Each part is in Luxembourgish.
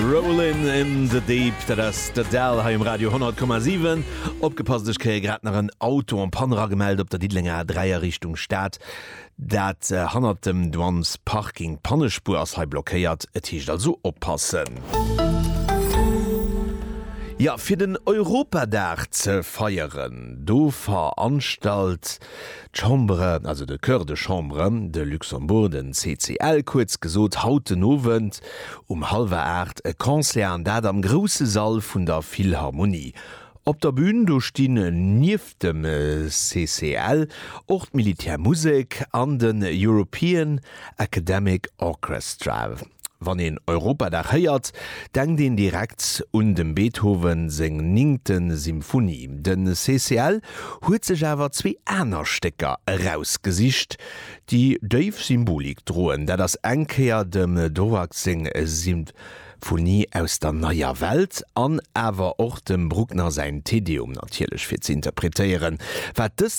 Rollin' in the Deep, dat ass d'Adele hei um Radio 100,7. Opgepasst, ech kréie grad nach en Auto en panne ragemellt op der Diddelenger A3 a Richtung Stad. Dat hannert dem Douane's Parking. D'Pannespuer ass hei blockéiert, et heescht also oppassen. Jo, fir den Europadag ze feieren, do veranstalt D'Chambre, also de Chœur de Chambre de Luxembourg, den CCL kuerz gesot, haut den Owend um hallwer 8 e Concert an dat am grousse Sall vun der Philharmonie. Op der Bühn do stinn nieft dem CCL och d'Militärmusek an den European Academic Orchestra. Wann een Europadag héiert, denkt een direkt un dem Beethoven seng ningte Symphonie. De CCL huet sech awer zwee aner Stécker erausgesicht, déi déif Symbolik droen. Dat ass eng Kéier dem Dvorak seng Symphonie aus der Neier Welt an awer och dem Bruckner säin Te Deum, natierlech fir ze interpretéieren, wat dës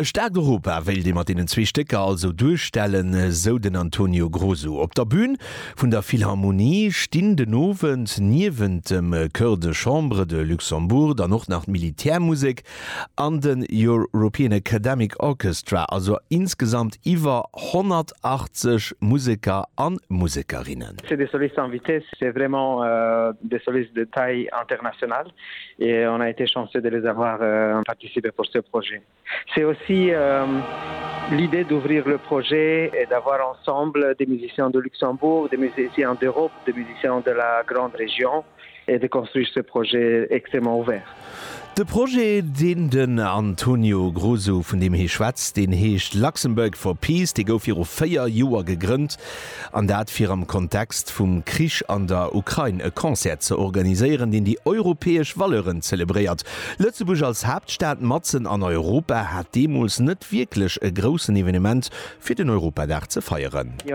E staarkt Europa wéilt ee mat deenen zwee Stécker also duerstellen, sou den Antonio Grosu. Op der Bün vun der Philharmonie stinn den Owend niewent dem Chœur de Chambre de Luxembourg dann och nach d'Militärmusek an den European Academic Orchestra, also insgesamt iwwer 180 Museker a Musekerinnen. C'est des solistes invités, c'est vraiment des solistes de taille internationale. Et on a été chanceux de les avoir participer pour ce projet. C'est aussi l'idée d'ouvrir le projet et d'avoir ensemble des musiciens de Luxembourg, des musiciens d'Europe, des musiciens de la grande région et de construire ce projet extrêmement ouvert. De Projet, deen den Antonio Grosso, vun deem hie schwätzt, deen heescht Luxembourg for Peace. Dee gouf viru véier Joer gegrënnt. An dat fir am Kontext vum Krich an der Ukrain e Concert ze organiséieren, deen déi europäesch Valeuren zelebréiert. Lëtzebuerg als Haaptstad matzen an Europa hat deemools net wierklech e groussen Evenement fir den Europadag ze feieren. Et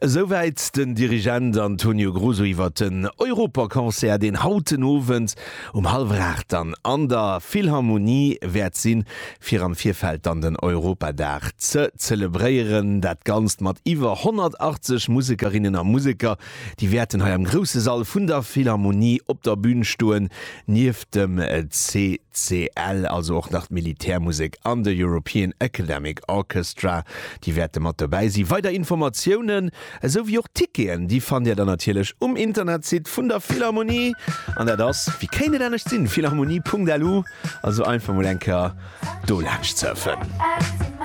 Esouwäit den Dirigent Antonio Gruso iwwer den Europaconcert, deen haut den Owend um hallwer 8 dann an der Philharmonie wäert sinn, fir am Virfeld dann den Europadag ze zelebréieren. Dat Ganzt mat iwwer 180 Musekerinnen a Museker, Déi wäerten hei am grousse Sall vun der Philharmonie op der Bün stoen, nieft dem CCL, also och nach d'Militärmusek an de European Academic Orchestra, déi wäerte mat dobäi sinn. Weider Informatiounen, esou wéi och d'Ticketen, déi fannt Dir dann natierlech um Internetsite vun der Philharmonie, an dat ass, wéi kéint et anescht sinn, philharmonie.lu, also einfach mol eng Kéier do laanscht surfen.